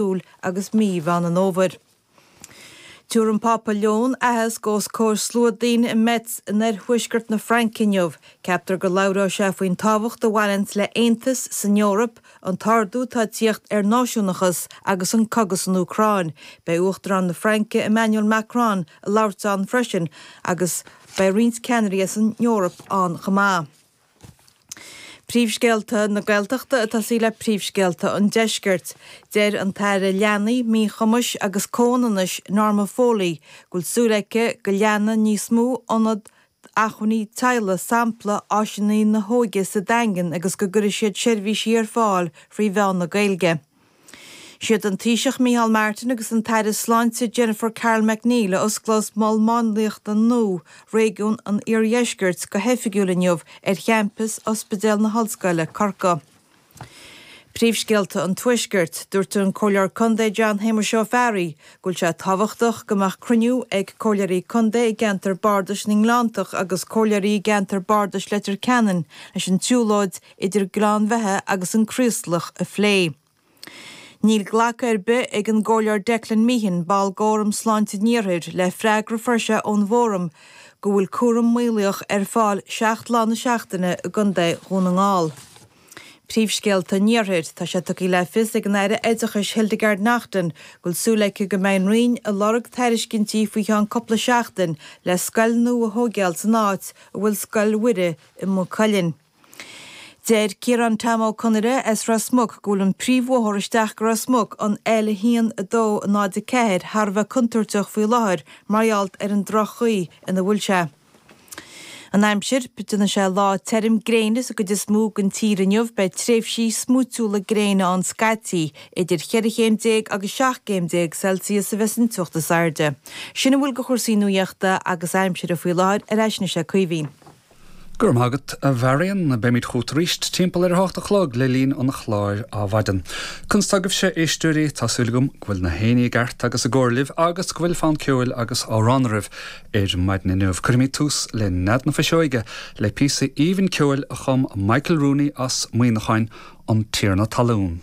Iúil agus mí Mheán an Fhómhair. Tabharfaidh an Pápa Leon aitheasc os comhair slua daoine i Metz in oirthuaisceart na Fraince inniu. Ceaptar go labhróidh sé faoin tábhacht a bhaineanns le haontas san Eoraip, an t-ardú atá ag tíocht ar náisiúnachas agus an cogadh san Úcráin. Beidh Uachtarán na Fraince Emmanuel Macron ag labhairt ann freisin agus beidh roinnt ceannairí as an Eoraip ann chomh maith. Príomhscéalta na Gaeltachta ag tosaí le príomhscéalta an Deiscirt. Deir an tAire Leanaí, Míchumais agus Comhionannais, Norma Foley, go bhfuil súil aici go leanfaidh níos mó ionad acmhainní teaghlaigh sampla Áiseanna na hÓige sa Daingean agus go gcuirfidh siad seirbhísí ar fáil thrí mheán na Gaeilge. Is iad an Taoiseach Micheál Martin agus an tAire Sláinte Jennifer Carroll MacNeill a osclós Mol Máinliachta nua Réigiún an Iardheiscirt go hoifigiúil inniu ar champas Ospidéal na hOllscoile, Corcaigh. Príomhscéalta an Tuaiscirt. Dúirt an Comhairleoir Contae John Shéamuis Ó Fearraigh go bhfuil sé tábhachtach go mbeadh cruinniú ag Comhairleoirí Contae i gCeantar Bardais na nGleanntach agus Comhairleoirí i gCeantar Bardais Leitir Ceanainn leis an tsiúlóid idir Gleann Bheatha agus an Craoslach a phlé. Níl glacadh ar bith ag an gComhairleoir Declan Meehan, ball d'Fhóram Sláinte an Iarthair, le freagra a fuair sé ón bhFóram go bhfuil cúram maolaíoch ar fáil seacht lá na seachtaine i gContae Dhún na nGall. Príomhscéalta an Iarthair Tá sé tugtha le fios ag an Aire Oideachais Hildegarde Naughton go bhfuil súil aici go mbeidh an Roinn ag lorg tairiscintí faoi cheann cúpla seachtain le scoil nua a thóigeáil san áit a bhfuil Scoil Mhuire i Maigh Cuilinn. Deir Ciarán Tom Ó Conaire as Ros Muc go bhfuil an príomhbhóthar isteach go Ros Muc, an L1, 2, 0, 4, thar a bheith contúirteach faoi láthair mar gheall ar an droch-chaoi ina bhfuil sé. An aimsir, déanfaidh sé lá tirim gréine sa gcuid is mó den tír inniu, beidh tréimhsí smúitiúla gréine ann scaití, idir cheithre chéim déag agus seacht gcéim déag Celsius a bheas an teocht is airde. Sin a bhfuil de chúrsaí nuachta agus aimsire faoi láthair, ar ais anois ag Caoimhín. Go raibh maith agat, a Mharion. Beimid chugat arís timpeall ar a hocht a chlog le linn an chláir Adhmhaidin. Conas tá agaibhse, a éisteoirí? Tá súil agam go bhfuil na héinní i gceart agus i gcóir libh agus go bhfuil fonn ceoil agus amhrán oraibh ar maidin inniu. Cuirfimid tús le Nead na Fuiseoige le píosa aoibhinn ceoil a chum Michael Rooney as Muíneacháin, An Tiarna Talún.